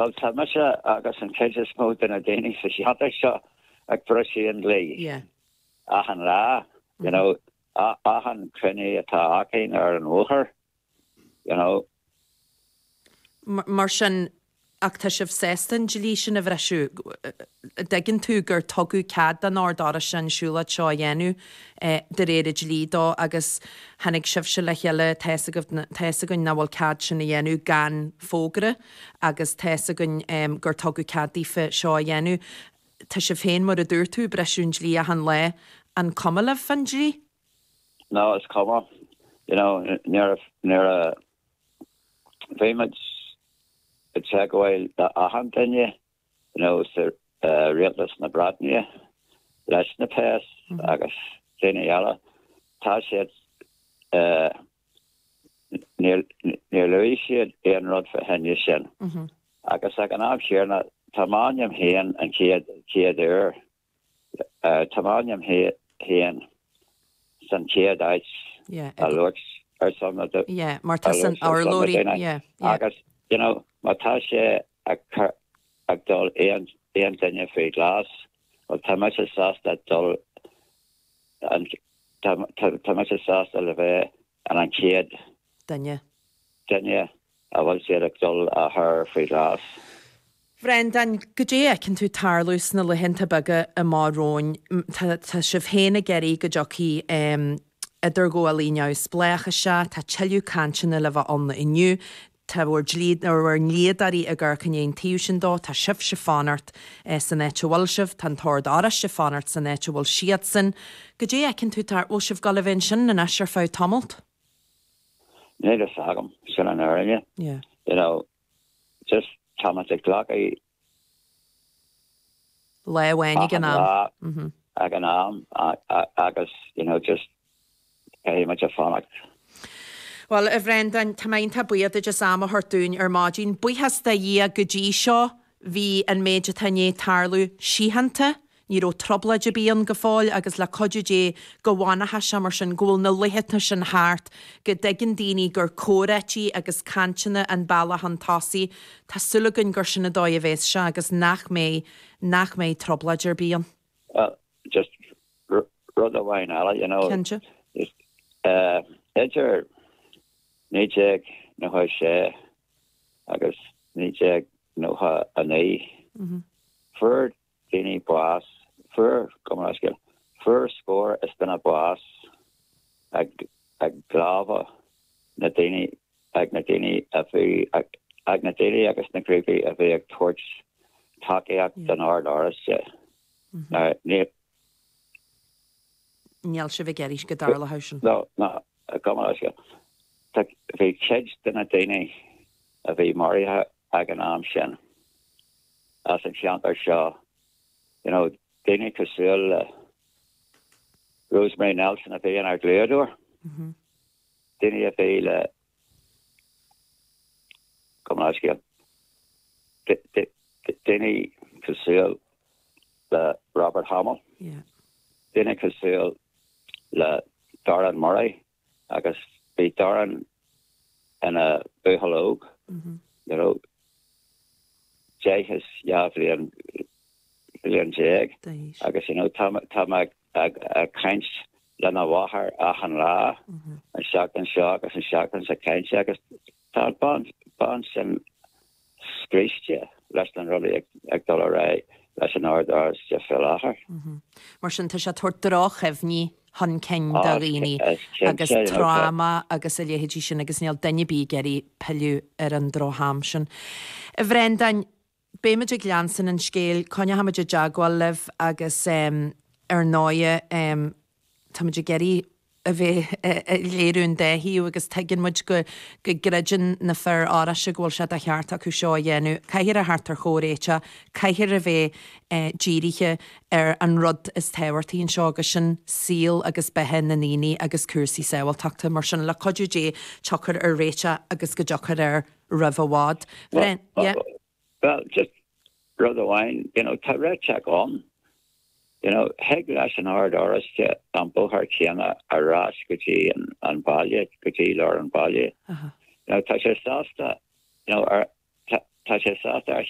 Bhuel, tá mise agus an chuid is mó de na daoine sa cheantar seo ag briseadh an dlí. Achan lá, you know, achan cruinniú atá againn ar an bhóthar, you know. Mar sin, ach tá sibh sásta an dlí sin a bhriseadh? An dtuigeann tú gur tugadh cead don Ord Oráisteach an siúlóid seo a dhéanamh de réir an dlí dó agus tháinig sibhse le chéile, tá fhios agaibh, tá fhios againn nach bhfuil cead sin a dhéanamh gan fógra. agus tá fhios againn gur tugadh cead daofa seo a dhéanamh. Tá sibh féin, mar a dúirt tú, ag briseadh an dlí achan lá. An cuma libh fan dlí? No, is cuma. You know, nuair a bhímid ag teagmháil le achan duine, nó rialtas na Breataine leis na péas agus daoine eile, tá siad, níor luaigh siad aon rud faoi sin. Agus ag an am chéanna, tá m'ainm féin an chéad uair Tá m'ainm féin san chéad áit a luaigh ar son na duine. Ié, mar tá san urlabhraí. Ié. Agus, you know, má tá siad ag cur aon duine faoi ghlas, well, tá mise sásta dul tá mise sásta le bheith an an chéad duine. Duine. An bhfuil siad ag dul a chur faoi ghlas? Bhreandáin, goidé a fheiceann tú ag tarlú sna laethanta beaga amach romhainn? Tá sibh féin ag iarraidh go dtiocfaidh idirghabhálaí neamhspléach isteach, tá tuilleadh cainteanna le bheith ann inniu, tá bhur ndlíodóirí ag amharc an ndéan tú seo dó, tá sibhse ag fanacht san áit a bhfuil sibh, tá an tOrd Oráisteach ag fanacht san áit a bhfuil siadsan. Goidé a fheiceann tú tar, bhfuil sibh dul a bheith ansin anois ar feadh tamaill? Níl a fhios agam sin an fhírinne. You know, just tá muid ag glacadh. Lá amháin ag an am. Lá ag an am agus, you know, just caithfidh muid fanacht. Bhuel, a Bhreandáin, tá mé iontach buíoch duit as am a thabhairt dúinn ar maidin. Buíochas do Dhia go dtí seo. Bhí an méid atá i ndiaidh tarlú síochánta. Ní raibh trioblóid ar bith ann go fóill agus le cuidiú Dé go bhfanfaidh sé mar sin, go bhfuil na laethanta sin thart, go dtuigeann daoine gur comhráití agus cainteanna an bealach chun tosaigh. Tá súil againn gur sin an dóigh a bhéas sé agus nach mbeidh, nach mbeidh trioblóid ar bith ann. Bhuel, just rud amháin eile, you know. Cinnte. Idir naoi déag, naoi sé. agus 1999, fuair daoine bás, fuair, gabh mo leithscéal, fuair scór is duine bás ag ag lámha na daoine, ag na daoine a bhí, ag ag na daoine agus na grúpaí a bhí ag tabhairt tacaíocht don Ord Oráisteach. Ná níl Níl sibh ag éirí go dtarlódh sin. Ná go mba seo. Bhí cuid de na daoine a bhí maraithe ag an am sin as an cheantar seo, daoine cosúil le Rosemary Nelson a bhí ina dlíodóir, daoine a bhí le Gabh mo leithscéal, duine cosúil le Robert Hamill, duine cosúil le Darren Murray agus bhí Darren ina buachaill óg, you know, deich is dhá bhliain, bliain déag agus, you know, tá mé, tá mé ag caint lena mháthair achan lá, an seachtain seo agus an seachtain seo caite agus tá an bhean sin scriosta leis na rudaí ag dul ar aghaidh leis an Ord Oráisteach faoi láthair. Mar sin tá sé ag tabhairt droch-chuimhní chun cinn do dhaoine agus tráma agus a leithéidí sin agus níl duine ar bith ag iarraidh pilleadh ar an droch-am sin. A Bhreandáin, Beimid ag leanstan an scéil, coinneoimid i dteagmháil libh agus ar ndóigh táimid ag iarraidh a bheith ag léiriú an dá thaobh agus tuigeann muid go gcreideann na Fir Oráiste go bhfuil sé de cheart acu seo a dhéanamh. Caithfear a theacht ar chomhréiteach, caithfear a bheith dírithe ar an rud is tábhachtaí anseo agus sin saol agus beatha na ndaoine agus cúrsaí sábháilteachta. Mar sin, le cuidiú Dé, tiocfar ar réiteach agus go dtiocfar ar. roimh i bhfad. A Bhreandáin, yeah. Well, just rud amháin, you know, tá réiteach ann, you know, thig leis an Ord Oráisteach an bóthar céanna ar ais go dtí an, an baile, go dtí lár an baile. Uh-huh. You know, tá sé sásta, you know, ar, tá, tá sé sásta ar